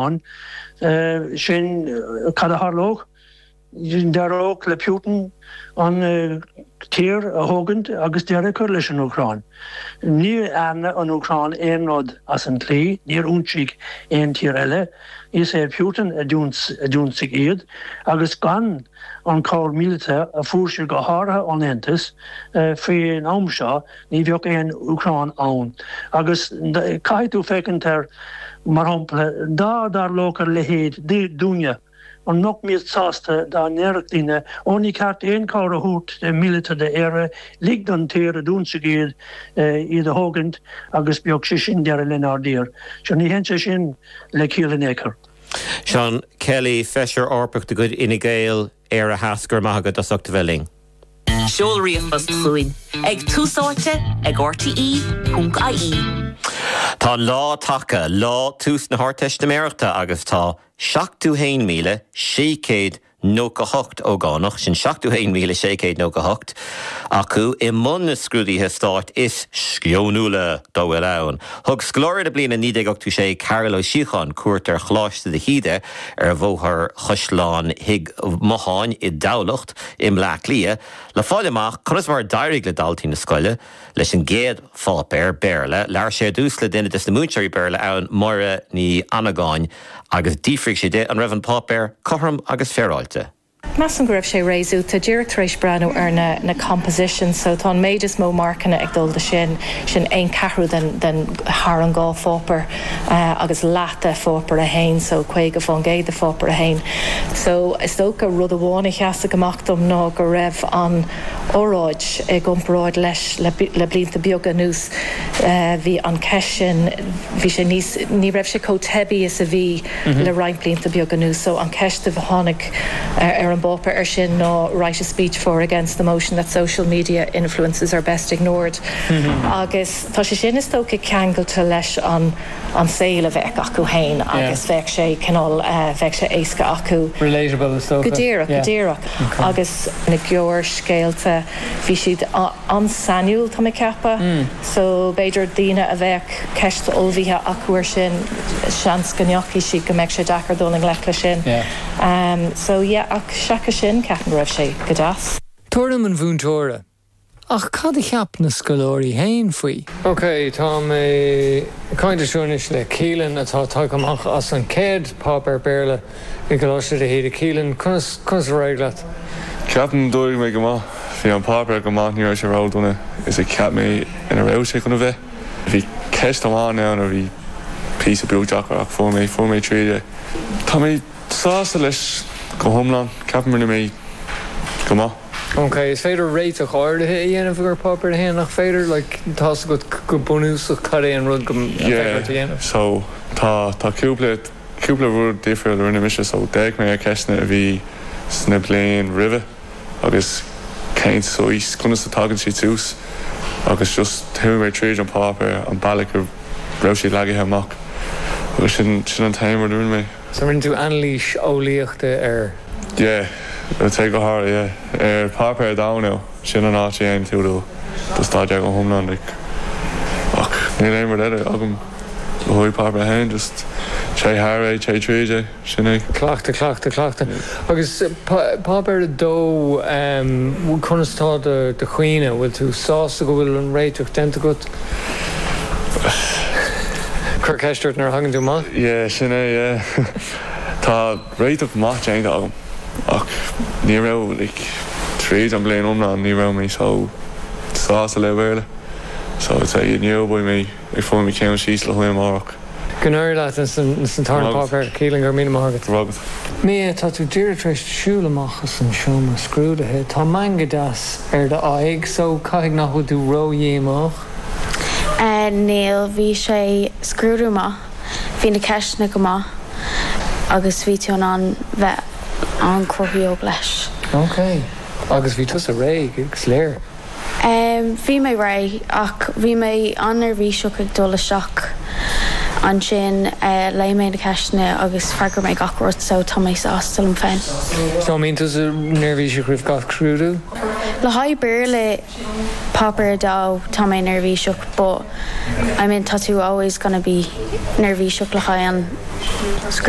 ann. Sin cad a tharlódh. D'éireodh le Putin an tír a thógaint agus deireadh a chur leis an Úcráin. Níor dhearna an Úcráin aon rud as an tslí, níor ionsaigh aon tír eile, is é Putin a d'ionsaigh iad, agus gan an chabhair mhíleata a fuair siad go háirithe ón Aontas faoin am seo, Ní bheadh aon Úcráin ann. Agus caithfidh tú féachaint air, mar shampla, dá dtarlódh a leithéid dúinne, an mbeimis sásta dá ndéarfadh daoine, Ó, ní ceart aon chabhair a thabhairt, míleata, d'Éire, ligint don tír a d'ionsaigh iad, iad a thógaint agus bíodh sé sin deireadh lenár dtír. Sea, ní théann sé sin le ciall in aon chor. Seán Kelly, Feisire Eorpach de chuid Fhine Gael. Theas, Go raibh maith agat as ucht a bheith linn. Tá an lá tagtha, lá tús na hArdteistiméireachta agus tá 71,698 ógánach, sin 71,698 acu, i mbun na scrúduithe stáit is sceonúla dá bhfuil ann. Thug scoláire na bliana 1986 Cárthach Ó Síocháin cuairt ar Choláiste de hÍde, Ar Bhóthar Chaisleán Thigh Motháin i dTamhlacht i mBleá Cliath le fáil amach conas mar a d'éirigh le daltaí na scoile leis an gcéad pháipéar, Béarla. Labhair sé ar dtús le duine des na múinteoirí Béarla ann, Máire Ní Annagáin, agus d'fhiafraigh sé di an raibh an páipéar cothrom agus féaráilte. Measaim go raibh sé réasúta díreach tar éis breathnú ar na na compositions so tá an méid is mó marcanna ag dul do sin, sin aon ceathrú den den thar an dhá pháipear agus leath de pháipear a haon so caoga faoin gcéad de pháipear a haon. So is dócha rud amháin a sheasfadh amach dom ná go raibh an óráid i gcomparáid leis le le blianta beaga anuas bhí an ceist sin bhí sé níos ní raibh sé chomh teibí is a bhí le roinnt blianta beaga anuas so an ceist a tháinig ar an bpáipéar air sin ná write a speech for or against the motion that social media influencers are best ignored agus tá sé sin is dócha ceangailte leis an saol a bheadh acu féin agus bheadh sé cineál bheadh sé éasca acu go díreach agus na gearrscéalta bhí siad an-sainiúil tá mé ag ceapadh so b'fhéidir daoine a bheadh ceist ullmhaithe acu ar sin seans go ndeachaigh siad go mbeadh sé deacair dul i ngleic le sin so yeah ach seachas sin ceapaim go raibh sé go deas. Tuairim an mhúinteora. Ach cad a cheap na scoláirí féin faoi? Ok, tá mé ag caint anseo anois le Keelan atá tagtha amach as an chéad pháipéar Béarla. I gColáiste de hÍde, Keelan, conas conas ar éirigh leat? Ceapaim gur d'éirigh mé go maith. Bhí an páipéar go maith, ní raibh sé ródhona is a cheap mé a raibh sé chun a bheith. Bhí ceist amháin ann a bhí píosa beag deacair ach fuair mé fuair mé tríd é. Tá mé sásta leis go hiomlán, ceapaim rinne mé go maith. Ok, is féidir réiteach áirithe a dhéanamh ar Pháipéar 1, nach féidir? Like, tá's agat go bunúsach cad é an rud go Yeah, so tá tá cúpla. Cúpla rud difriúil a rinne mise so d'fhéach mé ar na ceisteanna a bhí sna bliain roimhe agus cén saghas, conas a tagann siad suas agus just chuaigh mé tríd an páipéar an bealach a raibh siad leagaithe amach agus sin an t-aon rud a rinne mé. So rinne tú anailís eolaíochta air? Yeah, go háirithe ar páipéar, domhain é. Sin an áit a dhein tú do do staidéar go hiomlán like. Ach níl aon rud eile agam. Le haghaidh Páipéar 1, just téigh thar é, téigh tríd é, sin é. Cleachtadh, cleachtadh, cleachtadh. Agus Páipéar 2, conas atá do chroí, an bhfuil tú sásta go bhfuil an réiteach déanta agat? Cuirfead ceist ort nuair a thagann tú amach. Yeah, sin é, yeah. Tá. réiteach maith déanta agam ach ní raibh, like, tríd an bliain iomlán ní raibh mé chomh sásta le Béarla so I'd say inniu beidh mé ag fáil mo cheann síos le haghaidh amárach. Go n-éirí leat insan tarna páipéar, Keelan, go raibh míle maith agat. Go raibh maith agat. Mia, tá tú díreach tar éis siúl amach as an seomra scrúdaithe. Tá meangadh deas ar d'aghaidh so caithfidh nach bhfuil tú ró-dhíomách? Níl, bhí sé scrúdú maith. Bhí na ceisteanna go maith agus bhí tú in ann bheith an-chruthaitheach leis. Ok, agus bhí tusa réidh is dócha? Bhí mé réidh ach bhí mé an-neirbhíseach ag dul isteach. Ansin léigh mé na ceisteanna agus freagair mé gach rud so tá mé sásta liom féin. So mbíonn tusa neirbhíseach roimh gach scrúdú? Le haghaidh Béarla Páipéar 2, Tá mé neirbhíseach, but I mean tá tú always gonna be neirbhíseach le haghaidh an scrúdú.